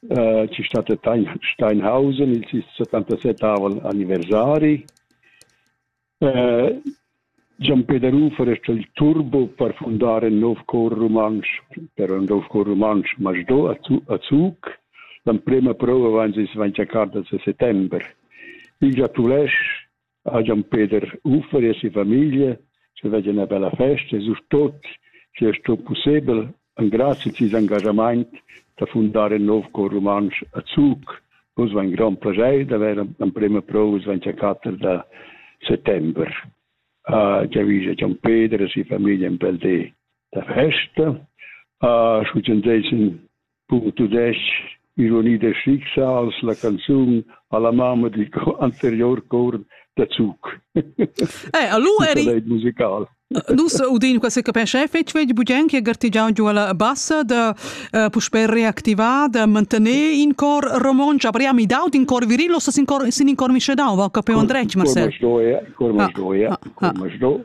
Ci stat Steinhausen, il settantasettavel anniversari. Gian Peder Ufer es il turbo per fundar ün nouv cor rumantsch, però ün nouv cor rumantsch masdò a Zug. L'emprema prova vains ais vain tschercà da settember. Il giatulèsch ha Gian Peder Uffer e sia famiglia che veglia ina bella festa e surtut che è sto pussebel engrazi ses engagament da fundar in nov cor rumantsch a Zug. Vus va in grand plaschair d'avere l'emprima prova Svancia da settembre. Uh, Giavisa Gian Peder e sia famiglia un bel di da festa. Uh, Schuzendeisen Cun tudestg Ironide Schicksals la canzun alla mamma digl anterior cor da Zug. Eh, allu eri musical. Nus udin quasi capisce fetg vegl bugen che gartigiau giu alla bassa da uh, puspè reactivar, da mantener in cor romonsch, aber ja mi daut in cor virillo, sin cor sin in cor mische dau, va capeon dretg, Marcel. Cor mas do, ja, cor mas do, ja, cor mas do.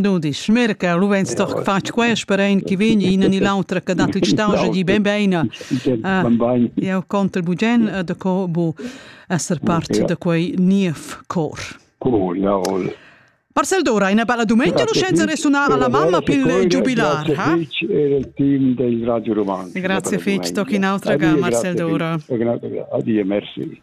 Dudisch. Mirca, lu vegns doch fatg quest per ein che vegn ina ni l'autra che dat il staugia di ben beina. Eu conter bugen da co bu esser part da quei niev cor. Cool, ja, ol. Marcel Dora, una bella domenica l'uscenza resunar alla mamma più giubilar. Grazie fetg e il team del Radio Romano. Grazie fetch, tocchi un'altra ga Marcel Dora. Addio, merci.